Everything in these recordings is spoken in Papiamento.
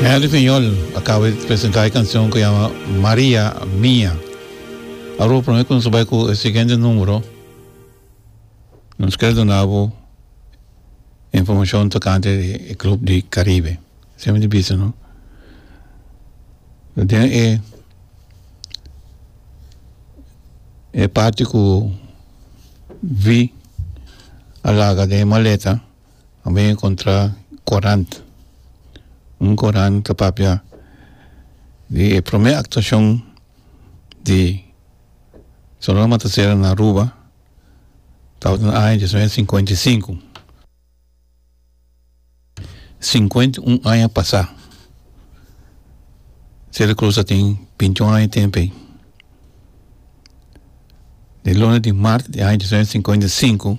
Henry Fiñol a caba di presenta e cancion cu yama Maria Mia. Aruba prome cu nos a bay cu e siguiente numero, nos ker duna bo informacion tocante di e club di Caribe. Seme di bisa no? Den e e parti cu vi a laga den e maleta, a mi a encontra corant un corant ta papia di e prome actuacion di Sonora Matancera na Aruba tabata na aña dies mil novecientos singenta i sinku sinkuenta i un aña pasa Celia Cruz a tin binti un aña tempo ayi di luna di marti di aña dies mil novecientos singenta i sinku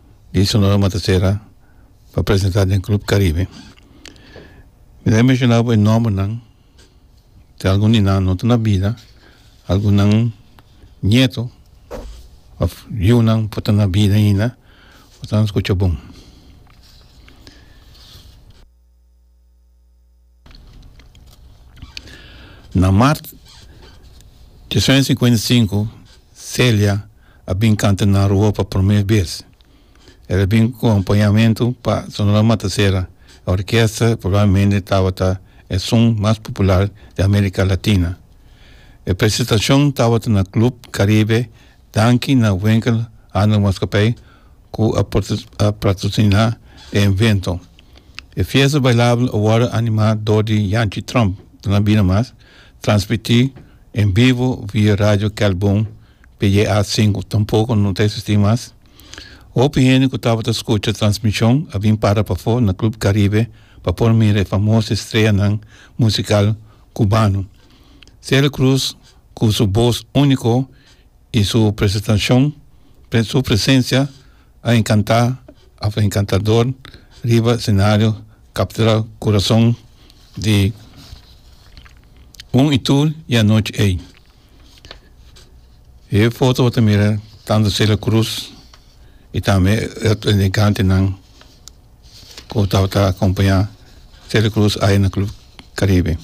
di Sonora Matasera pa presenta den Club Caribe. Mi ta menciona bo e nombernan, te algun di nan no ta na bida, algunan nieto of yunan por ta na bida ainda por ta nan scucha bon. Na Mart di es aña sinkuenta i sinku, Celia a bin kanta na Aruba pa promé bes. El a bin ku akompañamentu pa Sonora Matasera, e orkesta ku probablemente tabata e son mas popular di Amérika Latina. E presentashon tabata na Club Caribe Danki na Winkel Handel Maatskappij ku a patrosiná e evento. E fiesta bailabel a wòrdu animá dor di Janchi Tromp, Tuna Bida Mas, transmití en bivo via Radio Kelbum PJA sinku. Tampoko no ta eksistí mas. Hopi hende ku tabata skucha transmishon a bin para pafó na Club Caribe pa por mira e famoso estreanan musikal kubano. Celia Cruz ku su bos úniko, y su presentacion su presencia a encanta a fue encantador riba escenario captura corazon di un y tur y anochi ey e foto bo ta mira tanto Celia Cruz y tambe e otro elegantenan cu tabata acompaña Celia Cruz aye na club Caribe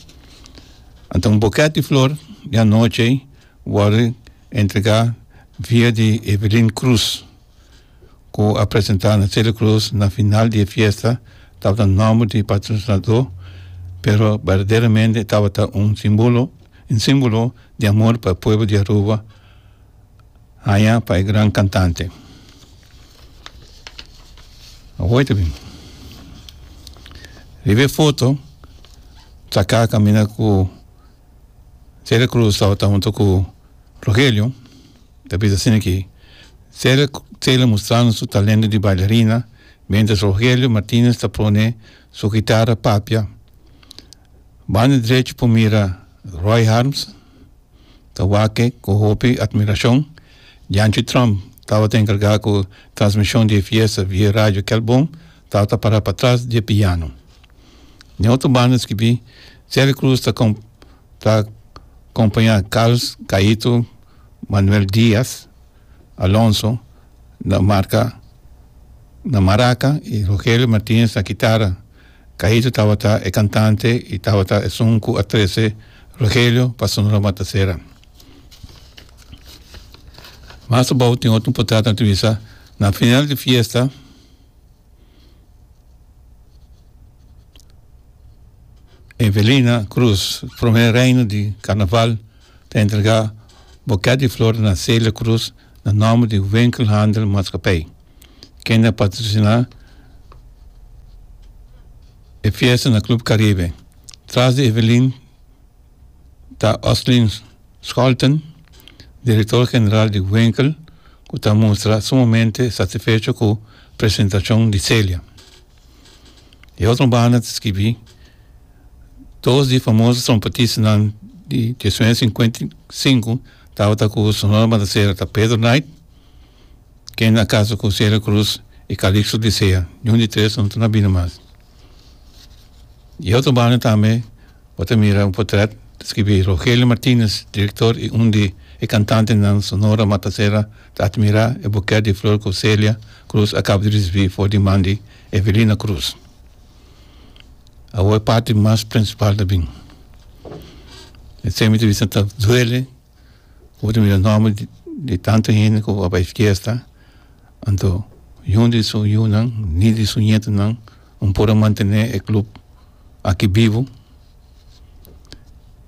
anto un boket di flor di anochi. wòrdu entregá via di Evelyn Cruz, ku a presentá na Celia Cruz na final di e fiesta, tabata nòmber di patrosinadó, pero berdaderamente tabata un simbolo un símbolo di amor pa e pueblo di Aruba haña pa e gran kantante. Awor ta bin riba e foto saká kaminda ku Celia Cruz tabata hunto cu Rogelio, ta bisa asina aki, Celia, Celia mustrando su talento di bailarina mientras Rogelio Martinez ta pone su guitarra papia. Banda drecho por mira Roy Harms, ta wak cu hopi admiracion. Janchi Trump tabata encarga cu transmision di e fiesta via radio Kelbon, tabata para patras di e piano. Den otro banda skibí, Celie Cruz ta kom ta kompañá Carlos Gaito Manuel Diaz Alonso na marka na maraka i Rogelio Martinez na kitara. Gaito tabata e kantante i tabata e sun ku a trese Rogelio pa Sonora Matasera. Mas abou tin otro portada ta bisa na final di fiesta. Evelina Cruz prome reino di Carnaval ta entrega boket di flor na Celia Cruz na nomber di Winkelhandel Maatskappij kende a patrocina e fiesta na Club Caribe tras di Evelin. ta Oslin Scholten direktor general di Winkel ku ta mustra sumamente satisfecho ku presentashon di Celia. Di otro banda ta skibí dos di famoso trompetistanan di Jesuense Sinkuenti Sinku tabata ku Sonora Matasera ta Pedro Knight Ken a kasa ku Celia Cruz i Calixto Dicea? Ni un di tres no ta na bini mas. E otro banda tambe bo ta mira un potrèt ta skibi Rogelio Martinez, direktor i un di e kantantenan Sonora Matasera ta atmirá e bukèt di flor ku Celia Cruz a kaba di risibí for di man di Evelina Cruz. Awor e parti mas prinsipal ta bin. Esei mi ta bisa ta duele. Bo ta mira nomber di tantu hende ku a bai fiesta anto yun di su yunan ni di su ñetunan no por a mantene e club aki bibu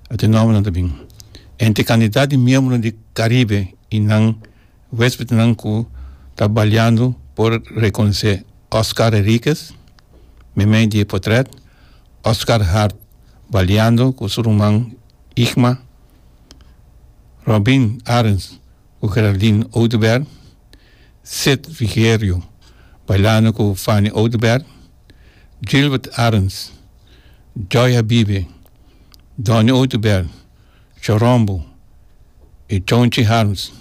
ate nombernan ta bin entre cantidad di miembro di caribe y nan huespednan ku ta baleando por reconoce Oscar Henriquez meimei di e potret Oscar Hart baleando ku su ruman Igma. Robin Arends ku Geraldine Oduber, Seth Rigerio bailando ku Fanny Oduber, Gilbert Arends, Joy Habibe, Donny Oduber, Chorombo i Chonchi Harms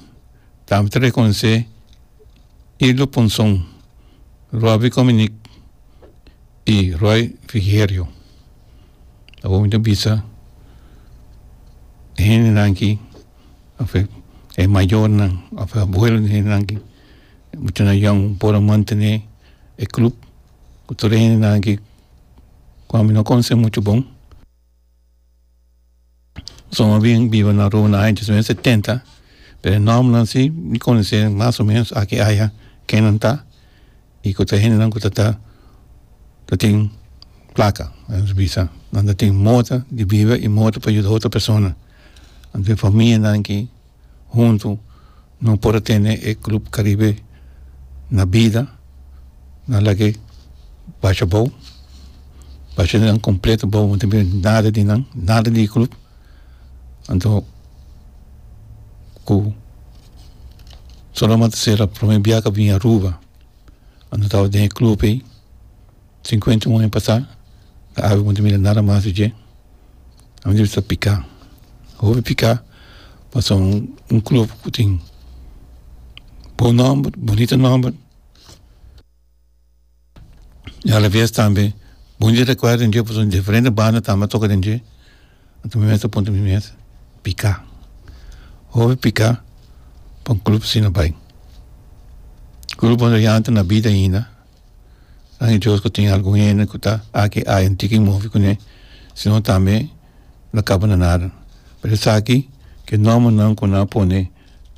tambe ta rekonosé Irlo Ponson, Robbie Cominique, I Roy Frigerio awor mi ta bisa hendenan aki of e mayornan of e abuelonan di hendenan aki bo ta na yòn por a mantene e club ku tur e hendenan aki ku ami no konosé muchu bon. Sono bien biba na Roma na aña diecinuebe setenta pero nòmbernan si mi konosé mas o menos aki aya kenan ta y ku ta hendenan ku ta ta ta tin plaka nan ta bisa nan ta tin mota di biba y mota pa yuda otro persona anto e famianan ki. huntu no por a tene e Club Caribe na bida, na lag'e basha bou, basha nan completo bou, no tin biba nada di nan, nada di e club, anto cu Solomon Sela prome biaha cu a bini Aruba, anto tawat den e club ey Sinkuenta un aña pasá, e awe ku no ta mira nada mas di dje, a mester sta piká. Hopi piká pasobra un club ku tin bon nòmber, bunita nòmber i a la bes tambe bonita rekuerdo den dje pasobra diferente banda tambe a toka den dje. Anto mi mes ta puntra mi mes, pika? Hopi pika pa un club asina bai. Club por yanta na bida ainda, gracias a Dios cu tin algun hende cu ta aki y ayo, no tin kin mofi cune, si no tambe no caba na nada. Pero esaki cu e nombernan cu nan a pone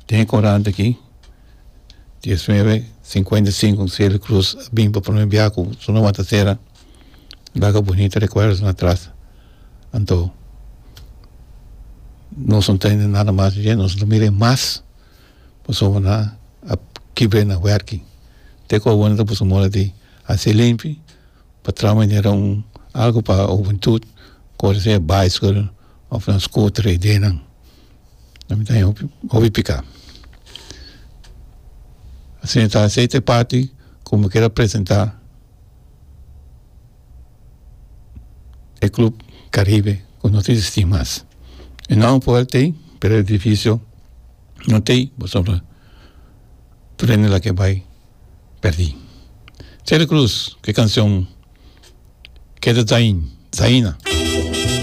den e coranta aki, diecinueve, cincuenta y cinco, Celia Cruz a bin pa prome biaha cu su nomber a wanta cera. laga bunita rekuerdonan atras anto nos no ta hende nada mas di dje nos lo mira e mas pasobra nan a kibr'e nan wèrkki te ku awor nan ta pusu moro di hasi limpi pa traha manera un algu pa hubentud ku ora si e baiskel of nan skuter e idenan nan mi ta haya hopi hopi pika esei ta esei ta e parti ku mi keda presenta. e club caribe cu no ta existi mas e nome por el tey pero e edificio no tey pasobra tur hende lak e bay perdi Terry Cruz cu e cancion keda dzain dzaina.